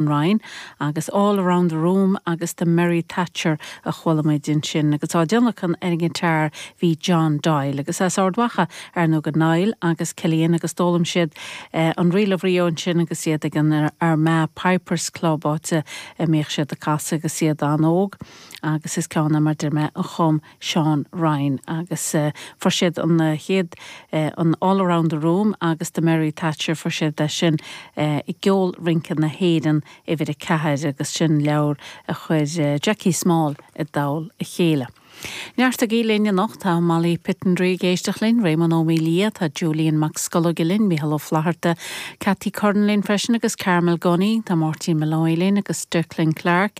of Rio' agus 'All around the room' agus 'The merry Thatcher' a chuala muid ansin agus á dtionlacan ar an ngiotár bhí John Doyle agus as Ard Mhacha ar ndóigh do Niall agus Cillian agus d'fhoghlaim siad an Reel of Rio ansin agus iad ag an Armagh Pipers Club áit a mbíodh siad ag casadh agus iad an-óg agus is ceann é mar deir mé a chum Seán Ryan agus fuair siad an chéad an All Around the Room agus The Merry Thatcher fuair siad é sin i gceol rince na hÉireann uimhir a ceathair agus sin leabhar a chuir Jackie Small i dtoll a chéile. Neartaigí linn anocht tá Molly Pittendrigh ag éisteacht linn, Réamonn Ó Maolaodha, tá Julian Mac Scolóige linn, Mícheál Ó Flatharta, Cathy Curran linn freisin agus Carmel Gunning, tá Máirtín Molloy linn agus Declan Clark.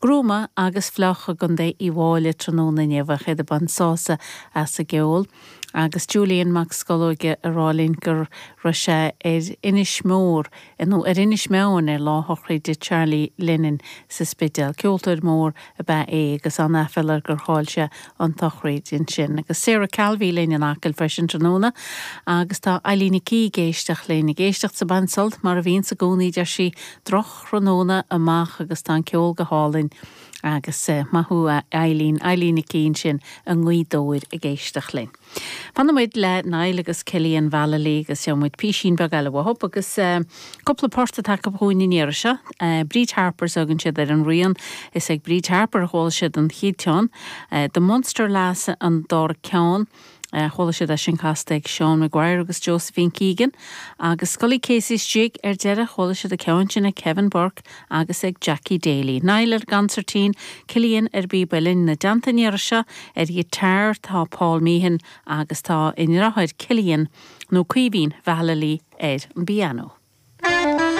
Gruama agus fliuch i gContae Uíbh Fhailí tráthnóna inniu ach iad ag baint sásamh as an gceol agus Julian Mac Scolóige ag rá linn go raibh sé ar Inis Mór, nó ar Inis Meáin ar lá shochraid Charlie Lennon sa Spidéal. Ceoltóir mór ab ea é agus an-aiféal air gur chaill sé an tsochraid ansin. Agus Sarah Calvey linn in Acaill freisin tráthnóna agus tá Eilín Nic Aoidh ag éisteacht linn. Ag éisteacht 's ag baint sult mar a bhíonns i gcónaí deir sí, thráthnóna amach agus tá an ceol go hálainn agus maith thú a Eilín, Eilín Nic Aoidh sin i nGaoth Dobhair ag éisteacht linn. Fanfaimid le Niall agus Cillian Vallely agus seo muid písín beag eile uathub agus cúpla port atá acu chugainn an iarraidh seo. Bríd Harper's a thugann siad ar an rian. Is ag Bríd Harper a chuala siad an chéad cheann, The Munster Lass an dara ceann. Chuala siad é sin casta ag Seán Maguire agus Josephine Keegan agus Scully Casey's istigh ar deireadh, chuala siad an ceann sin ag Kevin Burke agus ag Jackie Daly. Niall ar an gconsairtín, Cillian ar an bpíb uillinn, á dtionlacan an iarraidh seo ar ghiotár tá Paul Meehan agus tá a ndriotháir Cillian, nó Caoimhín Vallely, ar an bpianó.